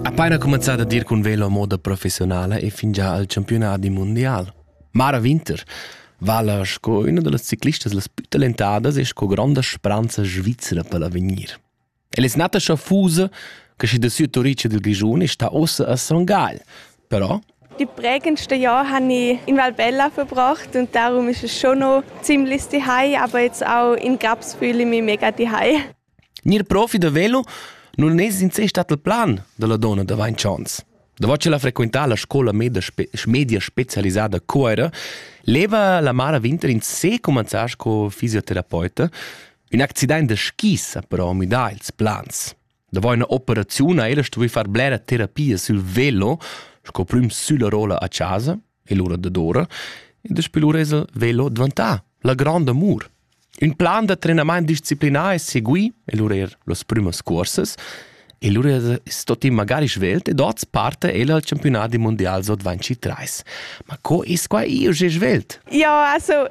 Appena cumanzà da dir cun velo a moda professionala e fingià al campiunadi mundial. Mara Winter vala sco üna da las ciclistas las plü talentadas e sco gronda spranza svizra per l'avegnir. El es nata schafusa, che schi da sü Turice del Grischun e sta ossa a Son Gagl. Però Die prägendsten Jahre habe ich in Valbella verbracht und darum ist es schon noch ziemlich zuhause, aber jetzt auch in Grabsbühl mich mega zuhause. Gnir profi da velo nun es in se stat il plan da la donna d'avaint chans. Davo ch'el ha frequentà la scoula media, spe media specialisada a Cuoira, leva la Mara Winter in se cumanzar sco fisioterapeute. Ün accident da skis ha però müdà ils plans. Davo üna operaziun ha ella stuvü far blera terapia sül velo, sco prüm sülla rolla a chasa, e l'ura dadora, e daspö lur esa velo dvantà la gronda amur. Ün plan da trenamaint disciplinà es segui, e lura eir las prümas cuorsas, e lura es stoti magari svelt ed oz parte el al campionat mundial so 23. Ma co es quai iu sche svelt? Ja, also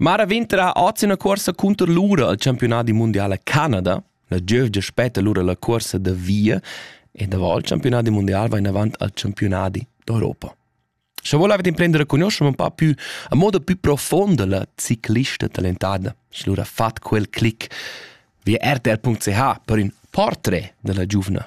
Mara Winter ha oz ina cursa cunter lura al campiunat di mundiala Canada. La gievgia spetta lura la cursa da via e davant il campiunat di mondial va in avant al campiunat d'Europa. Sche volevate imprendere a conoscere un po' più a modo più profondo la ciclista talentada, sche lura fat quel clic via rtr.ch per un portrait della giovane